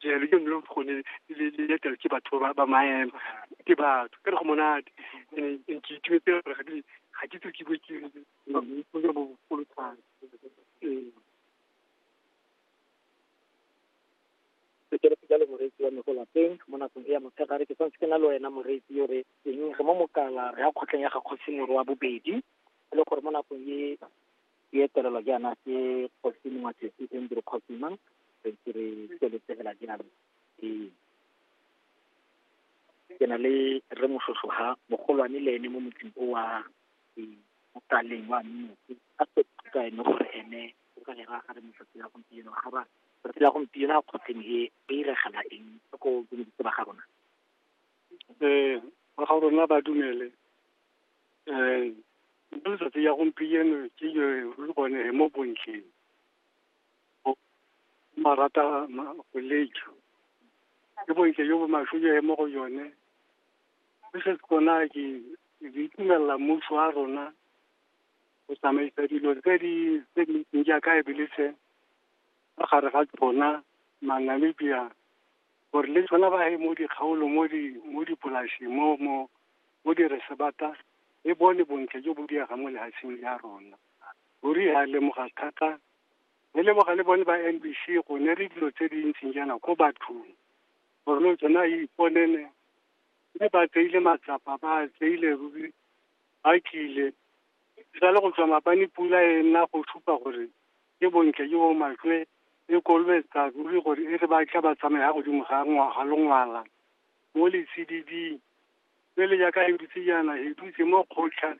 jalo ke nne gone le le etela ke batho ba ba maemo ke batho ka re go monate and and ke itumetse gore ga di ga ke tse ke bue ke ke bo bogolo thata ee sekereke jalo moreetsi wa me go lapeng mo nakong e ya motshegare ke tshwanetse ke na le wena moreetsi yo re eng re mo mokala re ya kgotleng ya ga kgosi moro wa bobedi e le gore mo nakong e Ke etelelwa jaana ke Kgosi Mongwatletsi Andrew Kgosima re ntse re tsweletsegela jaana ke ke na le re moshosho ha mogolwane le ene mo motseng o wa mokaleng wa mmotse a ka ene gore ene o ka lera ga re motsatsi la gompieno ga ba tsatsi la gompieno a kgotleng e e iregela eng ko bontsi ba ga rona um ba ga rona ba dumele um mo letsatsi ya gompieno ke le bone mo bontleng marata go lejo ke bontle yo bo maswe yo mo go yone se se kona ke di itumelela mmuso wa rona go tsamaisa dilo tse di tse di ntseng jaaka e bele se gare ga tsona Namibia gore le tsona ba ye mo dikgaolo mo di mo dipolasing mo mo mo diresebata e bone bontle jo bo diaga mo lehatsheng ya rona ruri ya lemoga thata re leboga le bone ba n b c go ne re dilo tse di ntseng jaana ko bathong gore le tsona e iponene mme ba tseile matsapa ba tseile ruri ba kile sa le go tswa mabane pula e nna go supa gore Ke bontle jo bo matlwe e kolobetsa ruri gore e re ba tla ba tsamaya godimo ga ngwaga longwala mo letsididing le le jaaka he dutse jaana he dutse mo kgotlha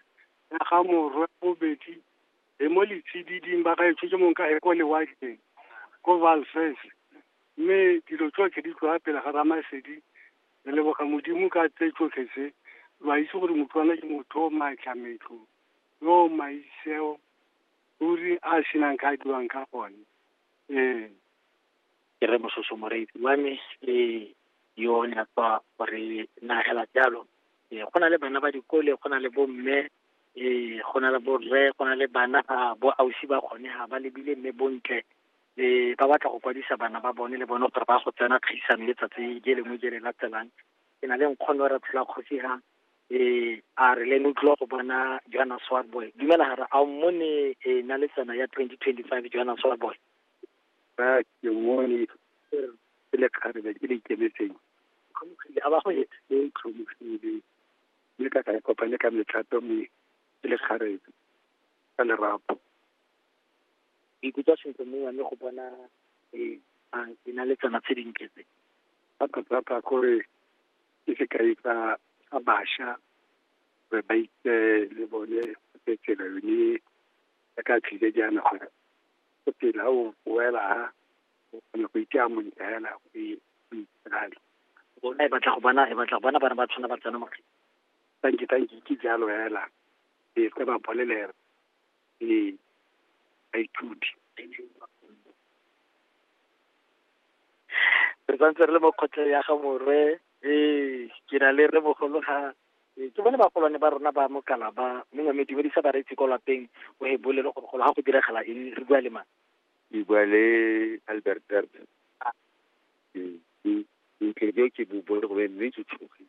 ya ga morwe bobedi he mo letsididing ba ga e tshotse mong ka he ko lewatleng ko valfes mme dilo tsotlhe di tloga pele ga ramasedi re leboga modimo ka tse tsotlhe tse lo a itse gore motlwana ke motho o maatla metlo yo maitseo ruri a a senang ka a dirwang ka gone ee ke re mososo moreetsi wa me ee yo o ne a tswa gore nagela jalo ee go na le bana ba dikole go na le bomme ee go na le borre go na le bana ga bo ausi ba gone ga ba lebile mme bontle ee ba batla go kwadisa bana ba bone le bone gore ba go tsena kgaisano e tsatsi je lengwe je le latelang ke na le nkgono re tshela kgosi ga eh a re le lo tlo go bona Johanna Swarboy dumela ga re a mmone e na le tsena ya 2025 Johanna Swarboy ba ke mmone ke le kgarebe ke le ikemetseng tlhomogile a ba go e e tlhomogile mme ka ka e kopane ka metlhato mme ke le kgarebe ka lerapo ikutlwa sentle mongwe mme go bona e a e na le tsena tse dintle tse thata thata gore ke sekai sa sa bašwa gore ba itse le bone se tsela yone ya ka tlhile jaana gore go phela o boela ha o kgone go itse a montle hela o itshale rona e batla go bona e batla go bona bana ba tshwana ba tsena makgetho tanki tanki ke jalo hela e se ba bolelela le baithuti. Re santse re le mo kgotleng ya ga morwe ee ke na le re mogolo ga ee, ke bone bagolwane ba rona ba mokala ba mongwe mme dumedisa bareetsi kwa lapeng o e bolele gore golo ga go diragala eng re bua le mang ke bua le albert bert Ah. Ee, ke- ke- ke- ke bo bone go be mme ke tshogile